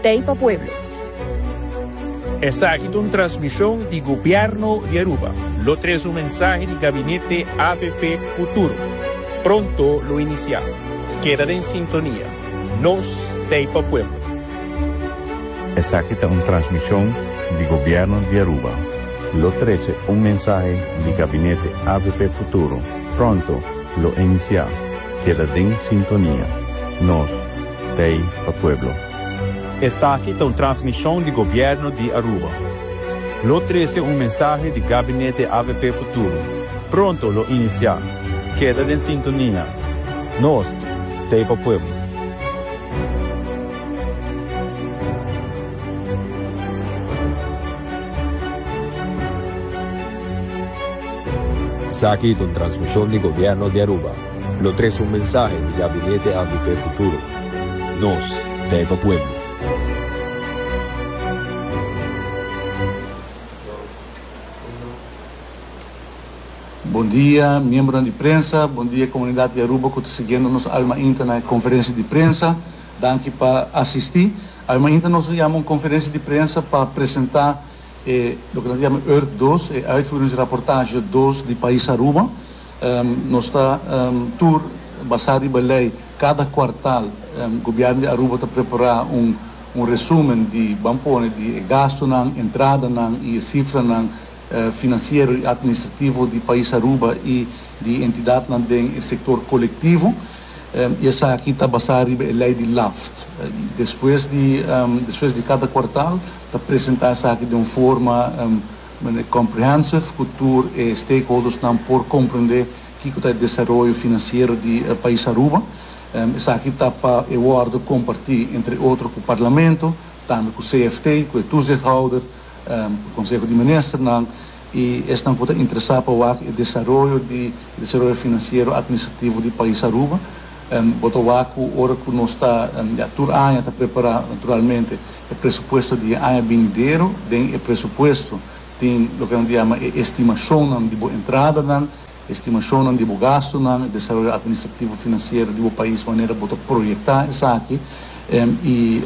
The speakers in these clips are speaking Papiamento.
Tei pa pueblo. Esaki ta un transmishon di Gobièrnu di Aruba. Lo tres un mensahe di Gabinete APP Futuro pronto lo inisiá. Keda den sintonia. Nos t'ei pa pueblo. Esaki ta un transmishon di Gobièrnu di Aruba. Lo tres un mensahe di Gabinete APP Futuro pronto lo inisiá. Keda den sintonia. Nos. Bay pa pueblo. Esaki ta un transmishon di Gobièrnu di Aruba. Lo trese un mensahe di Gabinete avp Futuro pronto lo inisiá. Keda den sintonia. Nos, Bay pa pueblo. Esaki ta un transmishon di Gobièrnu di Aruba. Lo tres un mensahe di Gabinete avp Futuro, Nos ta e pa pueblo. Bon dia miembronan di prensa, bon dia komunidat di Aruba ku ta siguiendo nos Alma Inter na e konferensia di prensa. Danki pa asisti. Alma Inter nos a yama un konferensia di prensa pa presentá e loke nan ta yama Urk dos, e uitvoeringsrapportage dos di pais Aruba. Nos ta tur basá riba lei. Kada kuartal Gobièrnu di Aruba ta prepará un resúmen di, ban pone, di e gastunan, entradanan i e sifranan finansiero i atministrativo di pais Aruba i di entidatnan den e sektor kolektivo. I esaki ta basá riba e lei di LAFT. Despues di kada kuartal ta presentá esaki den un forma. Bueno, e comprehensive cu tur e stakeholdersnan por comprende kico ta e desaroyo financiero di e pais Aruba. Esaki ta pa e worde comparti, entre otro, cu Parlamento, tambe cu CFT, cu e toezichthouder, cu Conseho di Ministernan y esnan cu ta interesa pa wak e desaroyo di e desaroyo financiero administrativo di pais Aruba. Bo ta wak cu ora cu nos ta ya tur aña ta prepara, naturalmente e presupuesto di e aña binidero, den e presupuesto tin loke nan ta yama e estimacionnan di bo entradanan, e estimacionnan di bo gastonan, e desaroyo administrativo financiero di bo pais manera bo ta proyecta esaki, y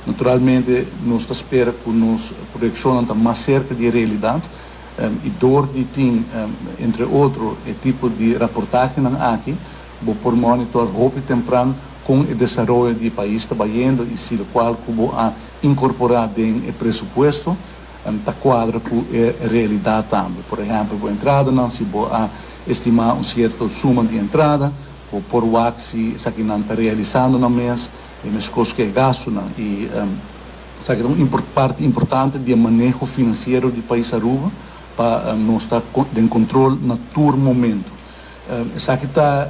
naturalmente nos ta spera cu nos proyeccionnan ta mas cerca di e realidad, y door di tin entre otro e tipo di raportahenan aki, Bo por monitor hopi tempran kon e desaroyo di e pais ta bayendo i si lokual ku bo a inkorporá den e presupuesto ta kuadra ku e realidat tambe. Por ehèmpel, bo entradanan, si bo a estimá un sierto suma di entrada, bo por wak si esakinan ta realisando nan mes e meskos ku e gastunan i esaki ta un parti importante di e maneho finansiero di pais Aruba pa nos ta den kontrol na tur momentu. Esaki ta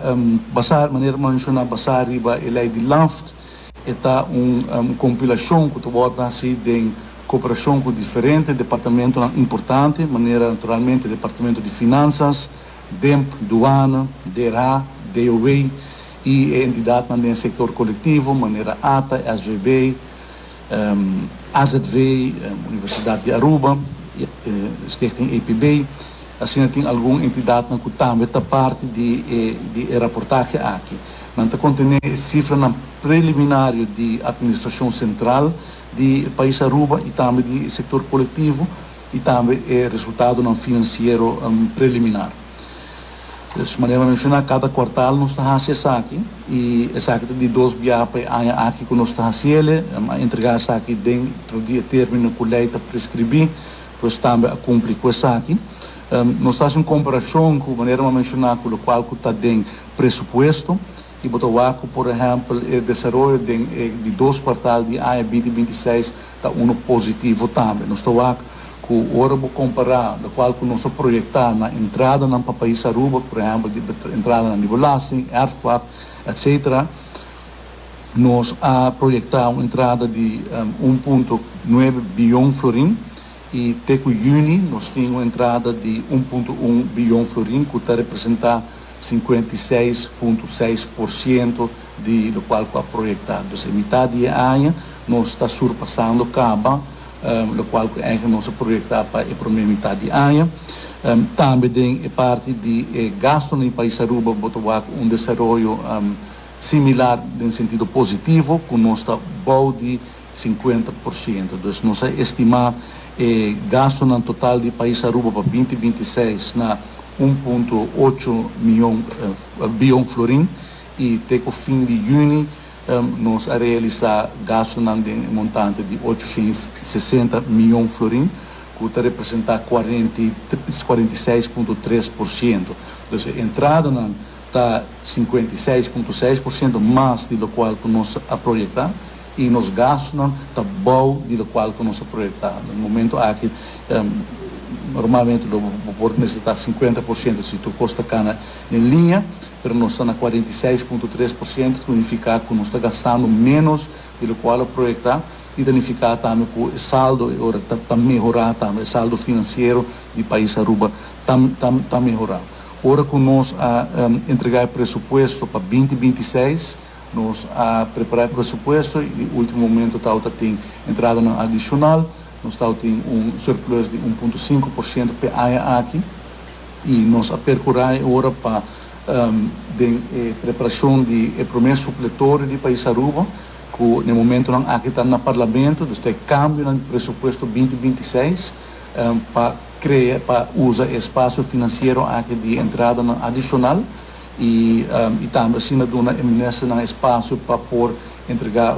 basá, manera manshoná basá riba e lei di LANFT. E ta un kompilashon ku ta wòrdu hasi den koperashon ku diferente departamentunan importante, manera naturalmente Departamento di Finansas, Demp, Duana, DRA, DOW i e entidatnan den sektor kolektivo, manera ata, SVB. azv, Universidad di Aruba, Stichting APB, asina tin algun entidadnan cu tambe ta parti di e raportahe aki. Nan ta contene e cifranan preliminario di administracion central di pais Aruba y tambe di e sector colectivo y tambe e resultadonan financiero preliminar. Pues manera mi a menshoná kada kuartal nos ta hasi esaki i esaki ta di dos biaha pa e aña aki ku nos ta hasiele. Nan a entregá esaki dentro di e término ku lei ta preskribí, pues tambe a kumpli ku esaki. Nos ta hasi un komparashon ku manera mi a menshoná ku lokual ku ta den presupuesto i bo ta wak ku por ehèmpel e desaroyo den e di dos kuartal di e aña binti binti seis ta unu positivo tambe. Nos ta wak. ku ora bo kompará lokual ku nos a proyektá na entradanan pa pais Aruba, por ehèmpel di entradanan di belasting, erfpacht, etsetera, nos a proyektá un entrada di un punto nuebe biyon florin i te ku yüni nos tin un entrada di un punto un biyon florin ku ta representá sinkuenta i seis punto seis por siento di lokual ku a proyektá. Dus den mitá di e aña nos ta surpasando kaba lokual ku enke nos a proyektá pa e promé mitat di aña. Tambe den e parti di e gastunan di pais Aruba bo ta wak un desaroyo similar den sentido positivo ku nos ta bou di sinkuenta por siento. Dus nos a estimá e gastunan total di pais Aruba pa binti binti seis na un punto ocho mion bion florin i te ku fin di yüni Nos a realisá gastunan den e montante di ocho ciento sesenta miyon florin, ku ta representá kuarenta i kuarenta i seis punto tres por siento. Entonces e entradanan ta sinkuenta i seis punto seis por siento mas di lokual ku nos a proyektá i nos gastunan ta bou di lokual ku nos a proyektá. Den momento aki normalmente lo bo por mester ta sinkuenta por siento si tur kos ta kana den liña, pero nos ta na cuarenta i seis punto tres por ciento, ta nifica cu nos ta gastando menos di loke a lo proyecta y ta nifica tambe cu e saldo e ora ta ta mehora tambe, e saldo financiero di pais Aruba ta ta ta mehora. Ora cu nos a entrega e presupuesto pa binti binti i seis, nos a prepara e presupuesto y di ultimo momento tawata tin entradanan adicional, nos tawata tin un surplus di un punto cinco por ciento p'e aña aki. I nos a percurá e ora pa den e preparacion di e prome supletorio di pais Aruba, cu na e momentonan aki ta na Parlamento, dus ta e cambionan di presupuesto binti binti seis, pa crea, pa uza e espacio financiero aki di entradanan adicional i i tambe asina duna e ministernan espacio pa por entrega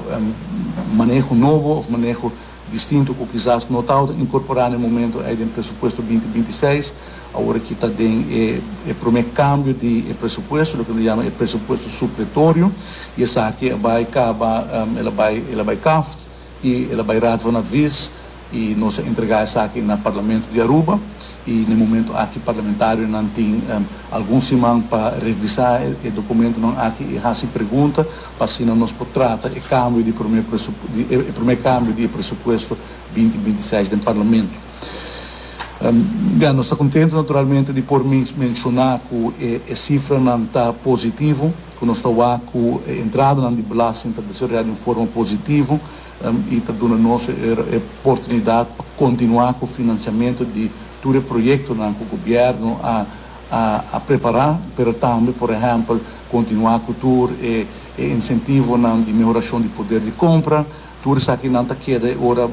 maneho nobo of maneho Distinto cu kisas no tawata incorpora na e momento ey den presupuesto binti binti i seis, awor aki ta den e prome cambio di e presupuesto, loke nos yama e presupuesto supletorio, y esaki a bay caba, el a bay, el a bay kaft y el a bay Raad van Advies, y nos a entrega esaki na Parlamento di Aruba, y na e momento aki parlamentarionan tin algun siman pa revisa e documentonan aki y haci pregunta pa asina nos por trata e kambio di promé presup di e promé kambio di e presupuesto binti binti seis den Parlamento. Bia, nos ta kontentu naturalmente di por men menshoná ku e e sifranan ta positivo, ku nos ta wak ku e entradanan di belasting ta desarroyá di un forma positivo i ta duna nos e e portunidat pa kontinuá ku finansiamentu di tur e proyektonan ku gobièrnu a a prepará, pero tambe por ehèmpel kontinuá ku tur e e insentivonan di mehorashon di poder di kompra. Tur esakinan ta keda e ora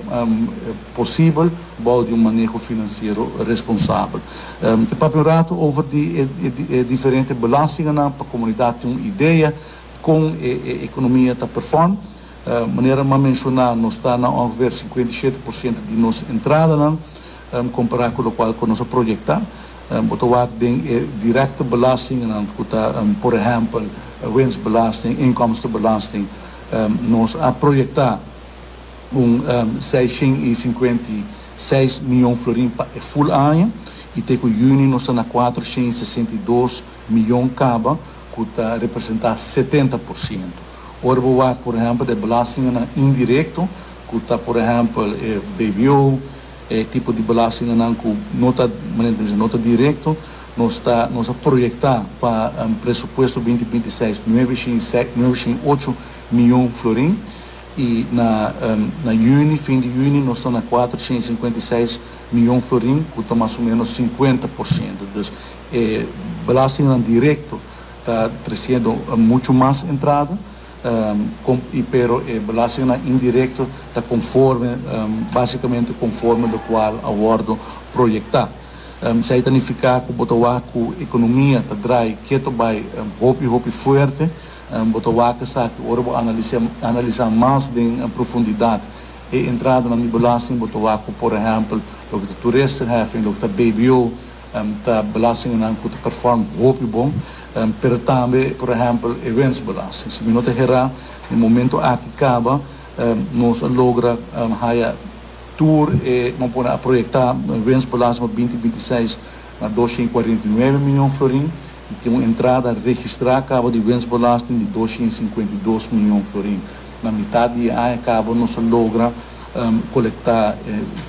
posibel bou di un maneho finansiero responsabel. E papia un rato over di e e diferente belastinganan pa komunidat tin un idea kon e e ekonomia ta perform. Manera m'a menshoná nos ta na ongefeer sinkuenta i shete por siento di nos entradanan kompará ku lokual ku nos a proyektá. Bo ta wak den e direkte belastingnan ku ta por ehèmpel winstbelasting, inkomstebelasting. Nos a proyektá un seis shen i sinkuenta i seis mion florin pa e ful aña i te ku yüni nos ta na kuater shen i sesenta i dos mion kaba ku ta representá setenta por siento. Ora bo wak por ehèmpel den belastingnan indirekto ku ta por ehèmpel e bbo, E tipo di belastinganan ku no ta, manera ku ta bisa, no ta direkto, nos ta, nos a proyektá pa presupuesto binti binti seis nueve shin i seis, nueve shin i ocho mion florin i na, na yüni, fin di yüni nos ta na kuater shin i sinkuenta i seis mion florin ku ta mas o ménos sinkuenta por siento. Dus e belastinganan direkto ta tresiendo muchu mas entrada. pero e belastingnan indirecto ta conforme, basicamente conforme locual a wordo proyecta. Esai ta nifica cu bo ta wak cu economia ta draai keto bai hopi hopi fuerte. Bo ta wak esaki ora bo analisa mas den profundidad e entradanan di belasting, bo ta wak cu por ehempel loke ta toeristerheffing, loke ta bbo, Ta belastingnan ku ta perform hopi bon, pero tambe por ehèmpel e wensbelasting. Si mi no ta herá, den momentu aki kaba nos a logra haya tur e, bo a pone a proyektá wensbelasting pa binti binti seis na dos shent kuarenta i nuebe mion florin. i tin un entrada registrá kaba di wensbelasting di doscientos y cincuenta y dos mion florin. Na mitat di e aña kaba nos a logra kolektá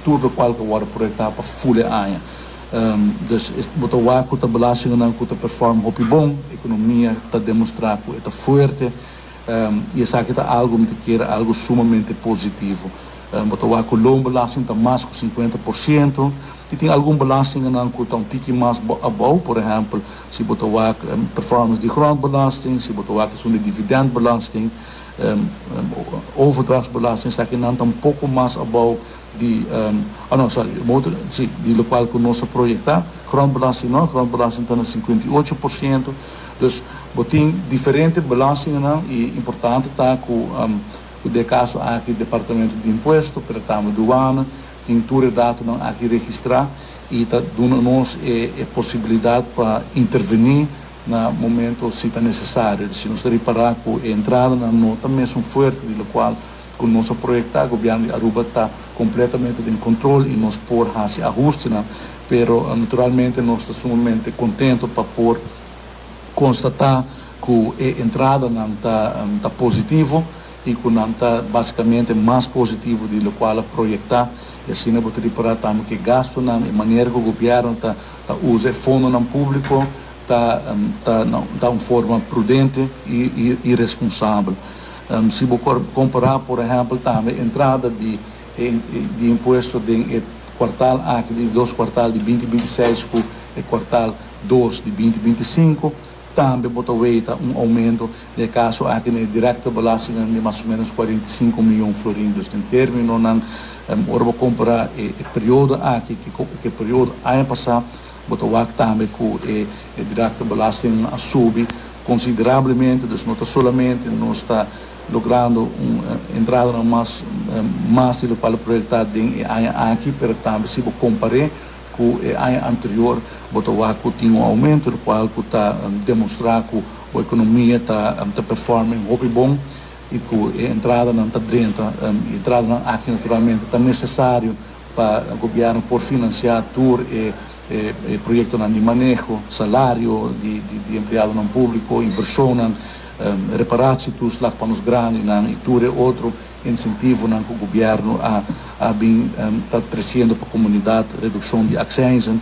tur lokual ku a wòrdu proyektá pa ful e aña. Dus bo ta wak ku ta belastingunan ku ta perform hopi bon, ekonomia ta demostrá ku e ta fuerte i esaki ta algu mi ta kere algu sumamente positivo. Bo ta wak ku loonbelasting ta mas ku sinkuenta por siento i tin algun belastinganan ku ta un tiki mas abou, por ehèmpel, si bo ta wak performance di grondbelasting, si bo ta wak esun di dividèndbelasting, overdrachtsbelasting, esaki nan ta un poko mas abou di, oh no, sòri, bo mester, si, di lokual ku nos a proyektá. Grondbelasting no, grondbelasting ta na sinkuenta i ocho por siento. Dus bo tin diferente belastinganan i importante ta ku. Ku de kaso aki Departamento di Impuesto, pretamo Duana, tin tur e datonan aki registrá i ta duna nos e e posibilidat pa intervení na momento si ta nesesario, di si nos ta ripará ku e entradanan no ta mesun fuerte di lokual ku nos a proyektá. Gobièrnu di Aruba ta kompletamente den kontrol i nos por hasi ahustenan, pero naturalmente nos ta sumamente kontento pa por. constata cu e entradanan ta ta positivo y cu nan ta basicamente mas positivo di locual a proyecta y asina bo ta repara tambe cu e gastonan, e manera cu gobierno ta ta uza e fondonan publico ta ta ta un forma prudente y y y responsabel. Si bo compara por ehempel tambe e entrada di e di impuesto den e cuartal aki di dos cuartal di binti binti seis cu e cuartal dos di binti binti i sinku, tambe bo ta weta un oumento den e kaso aki na e direkto belastingnan di mas o menos kuarenta i sinku mion florin. Dus den términonan, ora bo kompara e periodo aki ku e periodo aña pasá, bo ta wak tambe ku e direkto belastingnan a subi konsiderablemente. Dus no ta solamente nos ta logrando un entradanan mas mas di lokual proyektá den e aña aki, pero tambe si bo kompar'é, Ku e aña anterior bo ta wak ku tin un oumento lo kual ku ta demonstrá ku bo ekonomia ta performa en hopi bon i ku e entradanan ta drenta. E entradanan aki naturalmente ta nesesario pa gobièrnu por finansiá tur e proyektonan di maneho, salario di empleadonan públiko, invershonnan, reparatio tur slag pa nos grandinan i tur e otro. Insentivonan cu gobierno a bin ta treciendo pa comunidad, reduccion di accijnzen,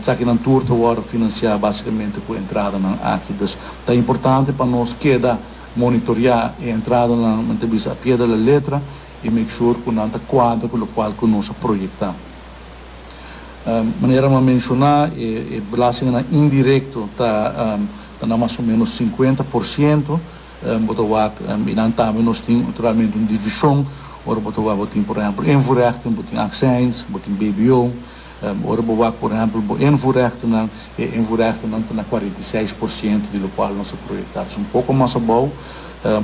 sakinan tur ta wordo financia basicamente cu entradanan aki. Dus ta importante pa nos keda monitorea e entradanan, men ta bisa a pie de la letra y make sure cu nan ta cuadra cu locual cu nos a proyecta. Manera m'a menciona, e belastinganan indirecto ta na mas o menos cincuenta por ciento. bo ta wak i nan tambe nos tin naturalmente un divishon ora bo ta wak bo tin por ehèmpel invoerrechten bo tin aksijns bo tin bbo ora bo wak por ehèmpel bo invoerrechtenan e invoerrechtenan ta na cuarenta y seis por ciento di locual nos a proyecta dus un poco mas abou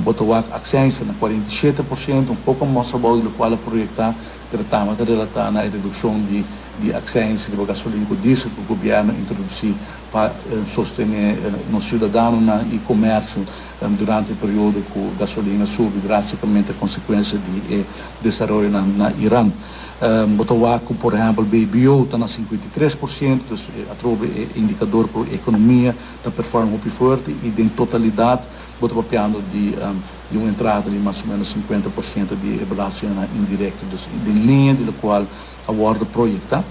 bo ta wak aksijns ta na cuarenta y siete por ciento un poco mas abou di locual a proyecta pero tambe ta relata na e reduccion di di aksijns riba gasolin cu diesel cu gobierno a introduci pa sostené nos siudadanonan i komersio durante e periodo ku gasolina a subi drástikamente konsekuensia di e desaroyonan na Iran. Bo ta wak ku por ehèmpel BBO ta na sinkuenta i tres por siento, dus atrobe e indikador ku ekonomia ta perform hopi fuerte i den totalidat bo ta papiando di di un entrada di mas o menos sinkuenta por siento di e belastinganan indirekto, dus den liña di lokual a wòrdu proyektá.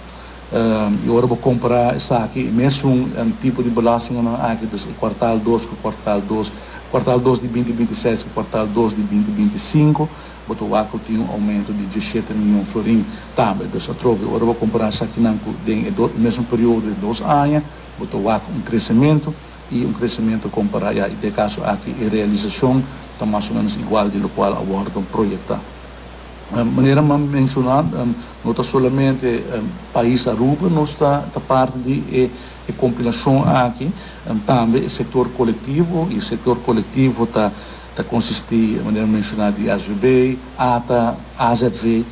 I ora bo compara esaki, e mesun tipo di belastinganan aki, dus e cuartal dos cu cuartal dos, cuartal dos di binti binti seis cu cuartal dos di binti binti sinco, bo ta waku tin un aumento di dieschete mion florin tambe. Dus atrobe, ora bo compara esakinan cu den e dos, e mesun periodo di dos aña, bo ta waku un crecemento, i un crecemento compara ya i den e caso aki e realisacion ta mas o menos igual di locual a wordo proyecta. Manera m'a menshona, no ta solamente pais Aruba nos ta ta parti di e kompilashon aki, tambe e sektor kolektivo, i e sektor kolektivo ta ta konsistí, manera m'a menshoná, di SVB, ata AZV,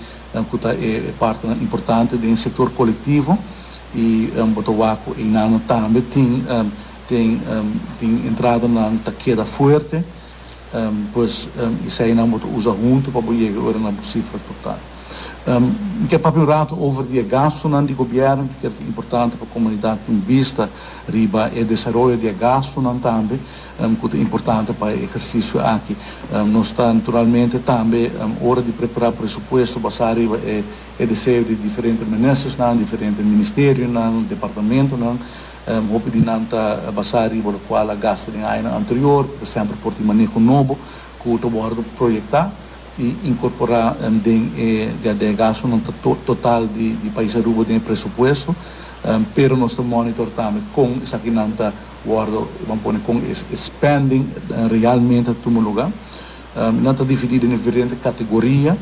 ku ta e partenan importante den e sektor kolektivo, i bo ta wak ku einanan tambe tin tin tin entradanan ta keda fuerte. Pues, eseinan bo ta usa huntu pa bo yega ora na bo sifra total. Mi kier papia un ratu over di e gastunan di gobièrnu. Mi kier ta importante pa komunidat tin bista riba e desaroyo di e gastunan tambe ku ta importante pa e eksersisio aki. Nos ta naturalmente tambe ora di prepará presupuesto basá riba e deseo di diferente ministerionan, departamentonan. Hopi di nan ta basá riba lokual a gasta den añanan anterior, por ehèmpel por tin maneho nobo ku ta wòrdu proyektá i inkorporá den e ya dè gastunan total di pais Aruba den e presupuesto, pero nos ta monitor tambe kon esakinan ta wòrdu, ban pone kon e spending realmente ta tuma lugá. Nan ta dividí den diferente kategoria,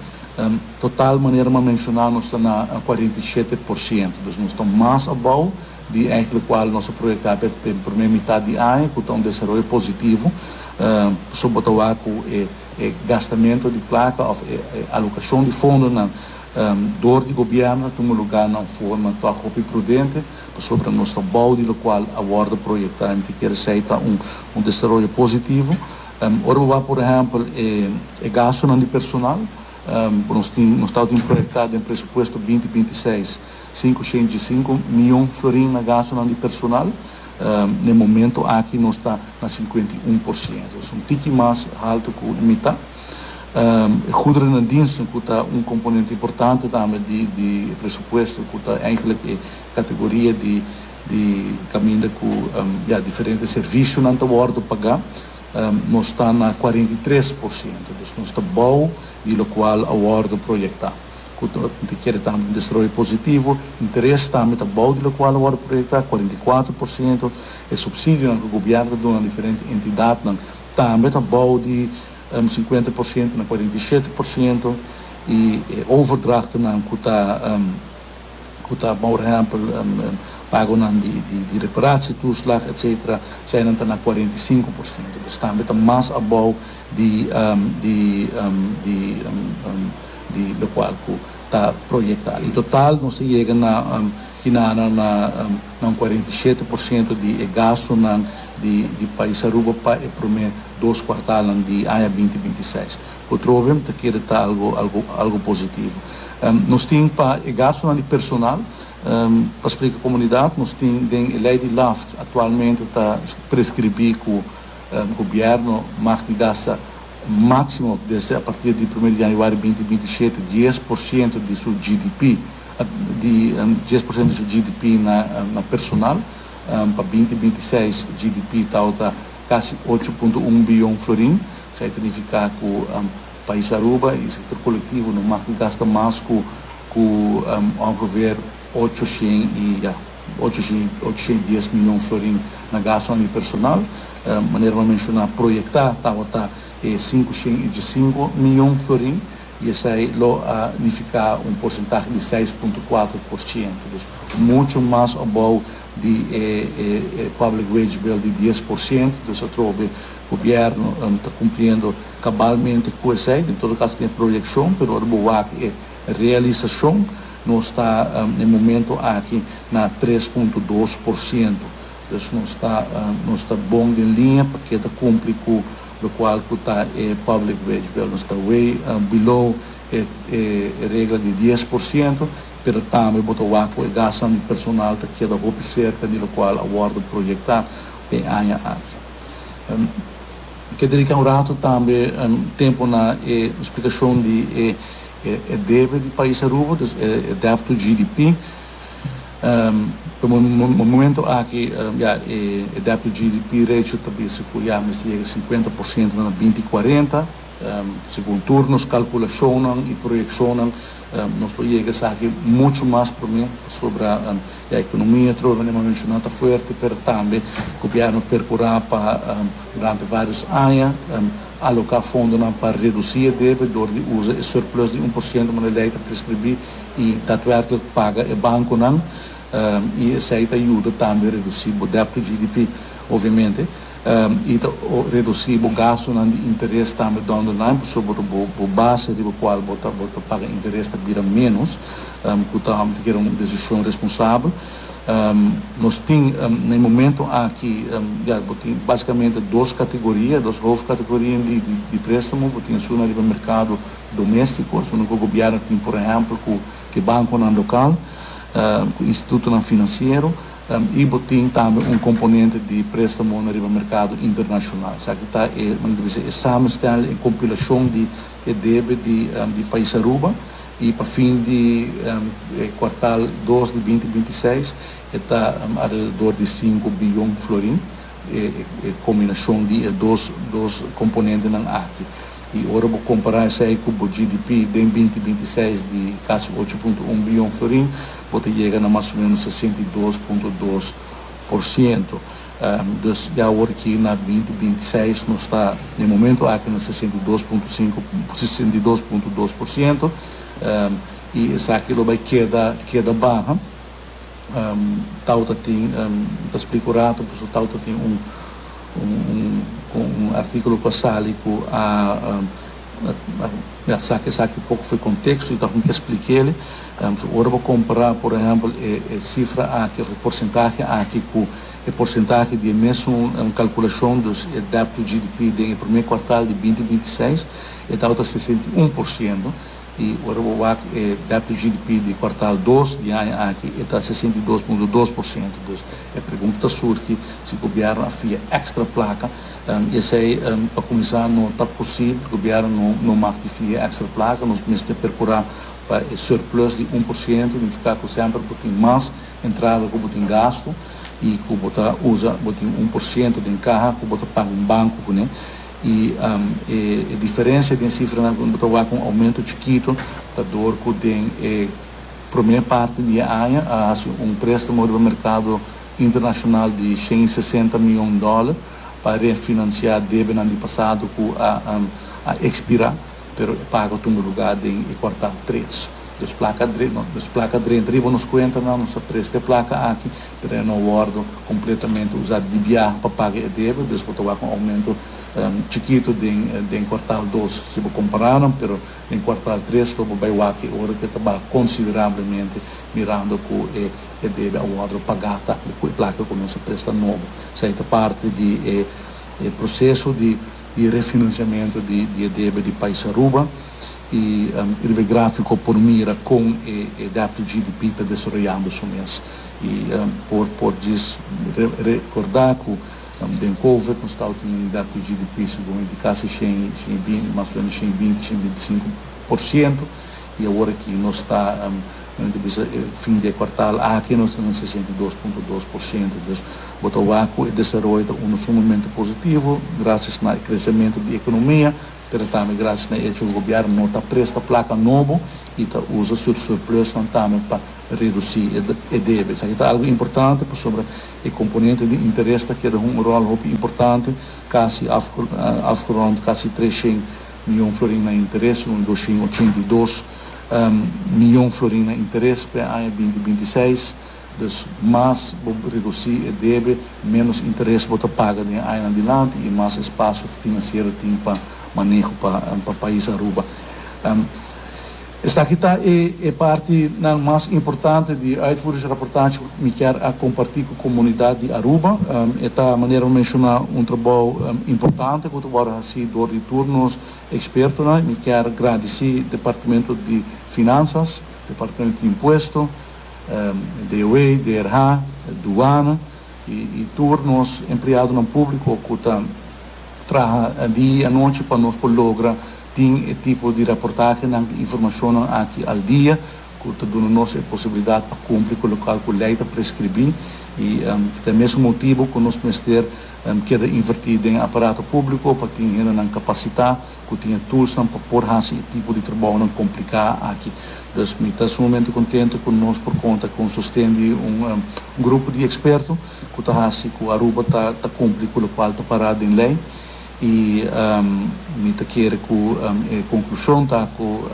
total manera m'a menshoná nos ta na kuarenta i shete por siento, dus nos ta mas abou. di eik lokual nos a proyektá pa e promé mitat di aña ku ta un desaroyo positivo pasobra bo ta wak ku e gastamentu di plaka òf e alokashon di fondonan dor di gobièrnu ta tuma lugá na un forma tòg hopi prudente pasobra nos ta bou di lokual a wòrdu proyektá mi ta kere esei ta un desaroyo positivo ora bo wak por ehèmpel e gastunan di personal. Ku nos tin, nos tau tin proyektá den presupuesto binti binti seis, sinku shentji sinku mion florin na gastunan di personal. N'e momento aki nos ta na sinkuenta i un por siento, es un tiki mas haltu ku e mitá. E guderen en diensten ku ta un komponente importante tambe di di e presupuesto ku ta eigenlik e kategoria di di kaminda ku, ya, diferente servisionan ta wòrdu pagá. Nos ta na cuarenta i tres por ciento, dus nos ta bou di locual a wordo proyecta. Cu ta kere tambe un desarroyo positivo. Interes tambe ta bou di locual a wordo proyecta, cuarenta i cuatro por ciento. E subsidionan cu gobierno ta duna diferente entidadnan tambe ta bou di cincuenta por ciento na cuarenta i shete por ciento. Y e overdrachtnan cu ta. ku ta por ehèmpel pagonan di reparatie toeslag etcetera eseinan ta na cuarenta y cinco por ciento dus tambe ta mas abou di lokual ku ta proyecta i total nos ta yega na hinanan na un cuarenta y siete por ciento di e gastonan di pais Aruba pa e prome dos kuartalnan di aña binti binti seis. Petroleum ta kere ta algo algo algo positivo. Nos tin pa e gastonan di personal, pa splika e comunidad, nos tin den e ley di LAFT actualmente ta prescribi cu gobierno mag di gasta maximo desde a partir di primer di januari binti binti i shete dies por ciento di su GDP di dies por ciento di su GDP na na personal pa binti binti i seis GDP tawata kasi ocho punto un biyon florin, esei ta nifiká ku pais Aruba i sektor kolektivo no mag di gasta mas ku ku ongeveer ocho shen i ya ocho shen i ocho shen i dies miyon florin na gastunan di personal. Manera bo a menshoná, proyektá tabata e sinku shen i diesinko miyon florin i esei lo a nifiká un porsentahe di seis punto kuater por shento. Dus muchu mas abou di e Public Wage Bill di dies por ciento, entonces a troba e Gobierno ta cumpliendo cabalmente cu esey, en todo caso tin e proyeccion, pero ora bo wak e realisacion, nos ta na e momento aki na tres punto dos por ciento, entonces nos ta nos ta bon den linea pa keda cumpli cu locual cu ta e Public Wage Bill, nos ta way below e regla di dies por ciento. pero tambe bo ta wak ku e gasnan di personal ta keda hopi serka di lokual a wòrdu proyektá den aña aki. N ke dediká un ratu tambe tempu na e splikashon di e debe di pais Aruba, dus e debt to GDP. Pa momentu aki ya e debt to GDP ratio ta bisa ku ya mester yega sinkuenta por siento na binti kuarenta. Segun tur nos kalkulashonnan i proyekshonnan nos lo yega esaki muchu mas promé pasobra ya ekonomia trova Neema menshoná ta fuerte pero tambe gobièrnu a perkurá pa durante vários aña aloká fondonan pa redusí e debe dor di usa e surplus di un por siento manera lei ta preskribí i datwèrklik paga e bankonan i esei ta yuda tambe redusí bo dèbt tu GDP. Obviamente. i ta redusí bo gastunan di interes tambe dònde nan pasobra ku bo base riba kual bo ta bo ta paga interes ta bira ménos, ku ta ta kere un desishon responsabel. Nos tin na e momentu aki ya bo tin básikamente dos kategoria, dos hofkategoria di di di préstamo. Bo tin asuna riba merkado doméstiko, asuna ku gobièrnu tin por ehèmpel ku ke bankonan lokal, ku institutonan finansiero. Tan i bo tin tambe un komponente di prestamonan riba merkado internashonal. Esaki ta e, nan ta bisa, e samenstel, e kompilashon di e debe di di pais Aruba. I pa fin di e kuartal dos di binti binti seis e ta alrededor di sinku biyon florin. e combinacion di e dos dos componentenan aki. Y ora bo compara esey cu bo GDP den binti binti seis di casi ocho punto un billon florin, bo ta yega na mas o menos sesenta y dos punto dos por ciento. Dus ya awor ki na binti binti seis nos ta den e momento aki na sesenta y dos punto cinco, sesenta y dos punto dos por ciento. Y esaki lo bay keda keda baha. Tau ta tin, mi ta splica un rato paso Tau ta tin un un articulo cu a sali cu a mi a saca esaki poco for e contexto y ta hopi explica ele. So ora bo compara por ehempel e cifra aki of e porcentahe aki cu e porcentahe di e mesun calculacion, dus e debt to GDP den e prome cuartal di binti binti seis, e Tau ta sesenta i un por ciento. i ora bo wak e dato GDP di kuartal dos di aña aki e ta sesenta i dos punto dos por siento. Dus e pregunta ta surgi si gobièrnu a fia èkstra plaka i esei pa kuminsá no ta posibel, gobièrnu no no mak di fia èkstra plaka, nos mester perkurá pa e surplus di un por siento, nifiká ku semper bo tin mas entrada ku bo tin gastu i ku bo ta usa bo tin un por siento den kaha ku bo ta paga un banku kuné. I e diferensia den sifranan ku no ta wak un oumento chikitu ta dor ku den e promé parti di e aña a hasi un préstamo riba merkado internashonal di shen i sesenta mion dòler pa renfinansiá debenan di pasado ku a ekspirá. pero e pago ta un luga den e kuartal tres. Nos plaka dren, nos plaka drenta riba nos kuentanan, nos ta presta e plaka aki, pero e no wòrdu kompletamente usá dibiá pa paga e debe, dus bo ta wak un oumento chikitu den den kuartal dos si bo kompará nan, pero den kuartal tres lo bo bai wak e ora ku e ta baha konsiderablemente mirando ku e e debe a wòrdu pagá ta ku e plaka ku nos a presta nobo. Esei ta parti di e e proseso di. di refinanciamento di e debe di pais Aruba y riba e grafico por mira con e debt to GDP ta desaroyando su mes y por djis recorda cu den covid nos tawba tin un debt to GDP segun e di casa shen y shen y binti mas o menos shen y binti shen y binti sinku por ciento y awor aki nos ta Nan ta bisa, E fin di e kuartal aki nos ta den sesenta i dos punto dos por siento. Dus, bo ta wak ku e desaroyo ta unda sumamente positivo grasias na e kresementu di ekonomia, pero tambe grasias na e echo ku gobièrnu no ta presta plaka nobo i ta usa su surplusnan tambe pa redusí e debe. Esaki ta algu importante pasobra e komponente di interes ta keda hunga ròl hopi importante, kasi afgerond kasi tres shen mion florin na interes i un dos shen ochenta i dos miyon florin na interes pa e aña binti binti seis. Dus mas bo redusí e debe, ménos interes bo ta paga den e añanan dilanti i mas espasio finansiero tin pa maneho pa pais Aruba. Esaki ta e partinan mas importante di uitvoeringsrapportage ku mi kier a kompartí ku komunidat di Aruba. E ta, manera mi menshoná, un trabou importante ku ta wòrdu hasí dor di tur nos. Ekspertonan, mi kier gradisí Departamento di Finansas, Departamento di Impuesto, DOW, DRH, Duana i tur nos empleadonan públiko ku ta traha di i anochi pa nos por logra tin e tipo di raportahenan i informashonnan aki al dia ku ta duna nos e posibilidat pa kumpli ku lokual ku lei ta preskribí i ta e mesun motibu ku nos mester Em keda invertí den aparato públiko pa tin hendenan kapasitá ku tin e tulsnan pa por hasi e tipo di trabounan kompliká aki. Dus mi ta sumamente kontentu ku nos por konta ku un sosten di un grupo di eksperto ku ta hasi ku Aruba ta ta kumpli ku lokual ta pará den lei i mi ta kere ku e konklushon ta ku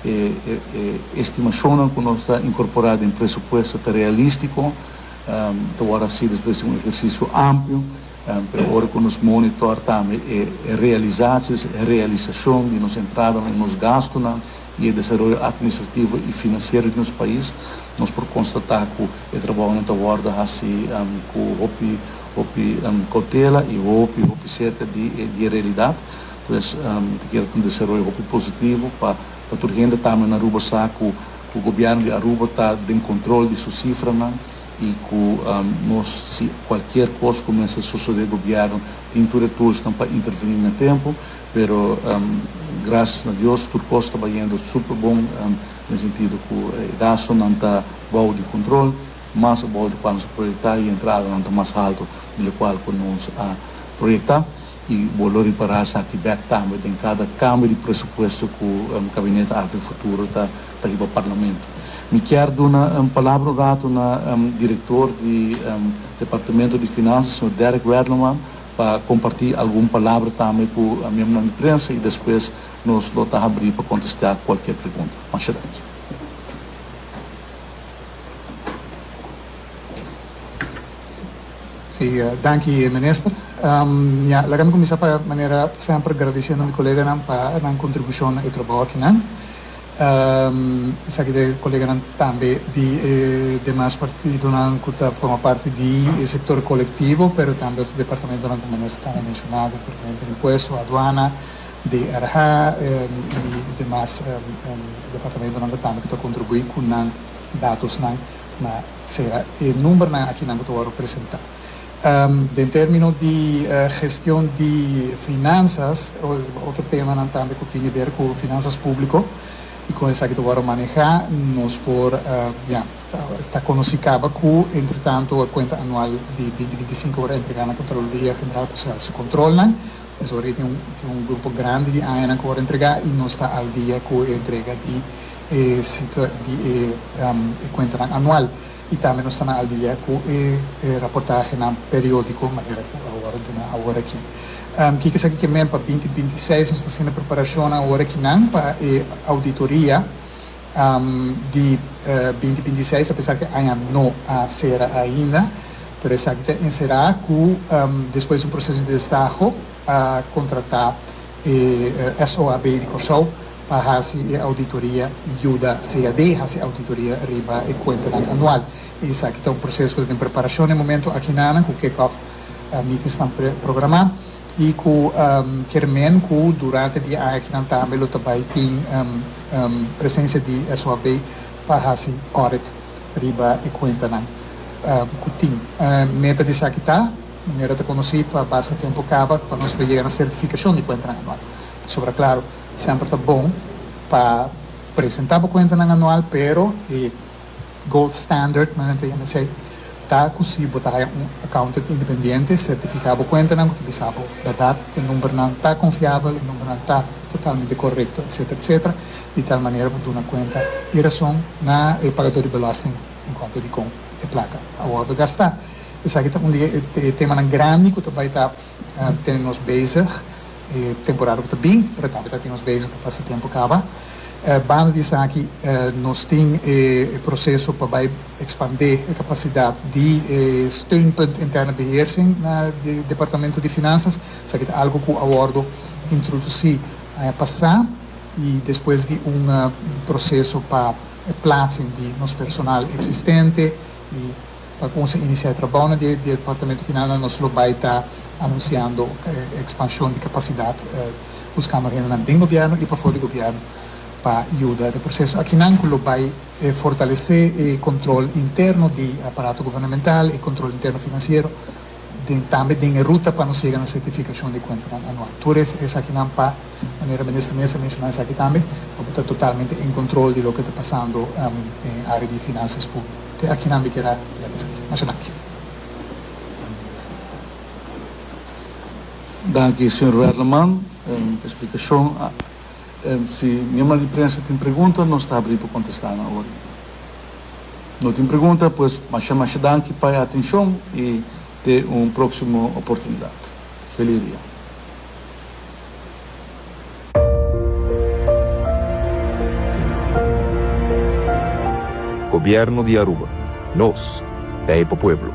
e e estimashonnan ku nos ta inkorporá den presupuesto ta realístiko. Ta wòrdu hasi despues di un ehersisio amplio, pero ora ku nos monitòr tambe e realisasianan, e realisashon di nos entradanan i nos gastunan i e desaroyo atministrativo i finansiero di nos pais, nos por konstatá ku e trabounan ta wòrdu hasi ku hopi, hopi koutela i hopi, hopi serka di e realidat. Pues, ta kere ta un desaroyo hopi positivo pa tur hende, tambe na Aruba sa ku Ku Gobièrnu di Aruba ta den kontrol di su sifranan i ku nos si kualkier kos ku mester sosodé Gobièrnu tin tur e tulsnan pa intervení na tempu, pero grasias na Dios tur kos ta bayendo super bon den sentido ku e gastonan ta bou di kontrol, mas abou di kua nos a proyektá i e entradanan ta mas haltu di lokual ku nos a proyektá. y bo lo ripará esaki bek tambe den cada cambio di presupuesto cu Gabinete Alto y Futuro ta ta hiba Parlamento. Mi kier duna palabra un rato na Director di Departamento di Finanzas, Señor Derrick Werleman, pa comparti algun palabra tambe cu miembronan di prensa y despues nos lo ta habri pa contestea cualkier pregunta. Masha danki. Si, danki Minister. Ya, laga mi kuminsá pa manera semper agradisiendo mi koleganan pa nan kontribushon na e trabou akinan. Esaki ta e koleganan tambe di e demas partidonan ku ta forma parti di e sektor kolektivo, pero tambe otro departamentonan ku Minister tambe a menshoná, Departamento di Impuesto, Aduana, DRH i demas departamentonan ku tambe ta kontribuí ku nan datosnan na. Sera e numbernan akinan ku ta wòrdu presentá. Den término di gestion di finansas otro temanan tambe ku tin di ber ku finansas públiko i kon esaki ta wòrdu manehá nos por ya ta konosí kaba ku entretantu e kuenta anual di binti binti sinku por entregá na Kontraloria General pa sa kontrolnan. Pues ora tin un grupo grandi di añanan ku wòrdu entregá i nos ta al dia ku e entrega di e situacion di e cuentanan anual y tambe nos ta na al dia cu e raportahenan periodico manera cu awor duna awor aki. Kico esaki ke men pa binti binti i seis nos ta haciendo preparacionnan awor akinan pa e auditoria di binti binti i seis apesar ke aña no a cera ainda pero esaki ta encera cu despues di un proceso di destaho a contrata e SOAB di Corsou pa hasi e auditoria yuda CAD hasi auditoria riba e kuentanan anual. I esaki ta un proseso ku ta den preparashon den momentu akinana ku kick-off meetings nan programá i ku kier men ku durante di e aña akinan tambe lo ta bai tin presensia di SOAB pa hasi audit riba e kuentanan ku tin. Meta di esaki ta, manera ta konosí pa basta tempu kaba pa nos lo yega na sertifikashon di kuentanan anual. Pasobra klaru. Semper ta bon pa presenta bo kuentanan anual, pero e gold standard, manera nan ta yama esei, ta ku si bo ta haya un accountant independiente sertifiká bo kuentanan ku ta bisa bo bèrdat ku e numbernan ta konfiabel, e numbernan ta totalmente korekto, etsetera, etsetera, di tal manera bo duna kuenta i rason na e pagadó di belòsting en kuanto dikon e plaka a wòrdu gastá. Esaki ta un di e temanan grandi ku ta bai ta. Ten nos bezig e temporada ku ta bin, Retabit ta tin nos bezig pa pasa tempu kaba. Banda di esaki nos tin e proseso pa bai ekspandé e kapasidat di e steunpunt interne beheersing na e departamentu di finansas. Esaki ta algu ku a wòrdu introdusí aña pasá i despues di un proseso pa e plaatsing di nos personal eksistente i. pa cuminsa inicia e trabaonan di e departamento kinan nan nos lo bay ta anunciando e expansion di capacidad buscando hendenan den gobierno y pafo di gobierno pa yuda e proceso akinan cu lo bay fortalece e control interno di aparato gubernamental y control interno financiero den tambe den e ruta pa nos yega na sertificacion di cuentanan anual. Tur e esakinan pa, manera Minister Meza a menciona esaki tambe, pa bo ta totalmente en control di loke ta pasando den area di financias publico. Te akinan mi quier a lek esaki. Masha danki. Danki, señor Werleman, den explicacion. Si miembronan di prensa tin pregunta, nos ta habrí pa kontestá nan ora i ora. No tin pregunta, pues mashá mashá danki pa e atenshon i te un próksimo oportunidat. Felis dia. Gobierno di Aruba, Nos, ta e pa pueblo.